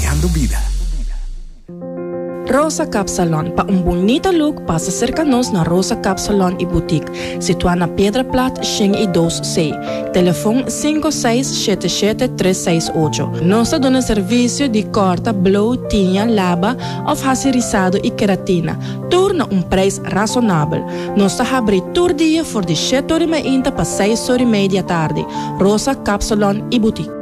Creando Bida. Rosa Cap Salon, pa un bunita look pasa serka nos na Rosa Cap Salon y Boutique, situá na Piedra Plat shen y dos C, telefon sinku seis shete shete tres seis ocho. Nos ta duna servisio di kòrta, blow, tiña, laba òf hasi risado y keratina, tur na un preis rasonabel. Nos ta habri tur dia for di shete ori mainta pa seis ori mei di atardi. Rosa Cap Salon y Boutique.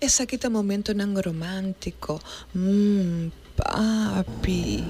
Esaki ta momentonan romántico, mm, papi.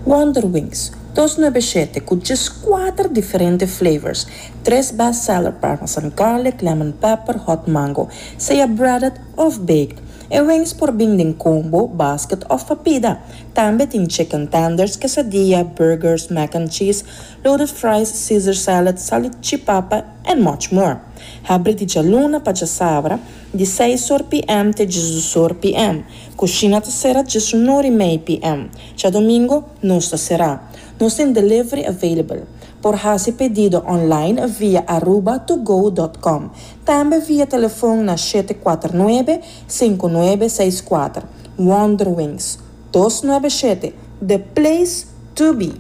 Wonderwings, dos nuebe shete cu djes cuater diferente flavors, tres best seller parmesan garlic, lemon pepper, hot mango, sea breaded of baked. E wings por bin den combo, basket of pa pida. Tambe tin chicken tenders, quesadilla, burgers, mac and cheese, loaded fries, caesar salad, salichipapa and much more. Habri di djaluna pa djasabra. Di seis or PM te dje dus or PM. Kushina ta sera dje su nor i mei PM. Djadomingo nos ta sera. Nos tin delivery available. Por hasi pedido online via Aruba to go dot com. Tambe via telefon na shete kuater nuebe, sinku nuebe seis kuater. Wonderwings. Dos nuebe shete. The place to be!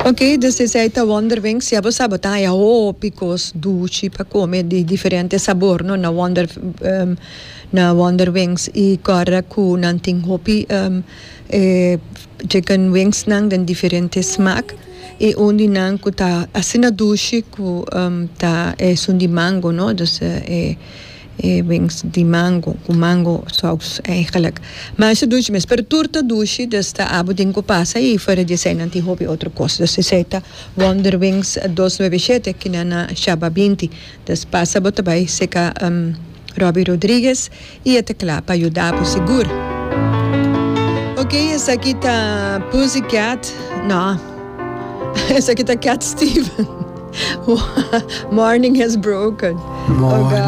Ok dus esei ta wonderwings ya bo sa bo ta haña hopi kos duchi pa kome di diferente sabor no na wonder na wonderwings i kòrdá ku nan tin hopi e chicken wings nan den diferente smak i un di nan ku ta asina dushi ku ta esun di mango no dus e E bens di mango cu mango saus eigenlijk. Mas e dushi mes. Pero tur ta dushi dus ta abo den cu pasa y fuera di esey nan tin hopi otro cos. Dus esey ta Wonder Wings dos nuebe shete ki na na Shabba binti. Dus pasa bo ta bay seca Robbie Rodriguez y e ta cla pa yuda bo sigur. Ok esaki ta Pussy Cat no esaki ta Cat Stevens Morning has broken.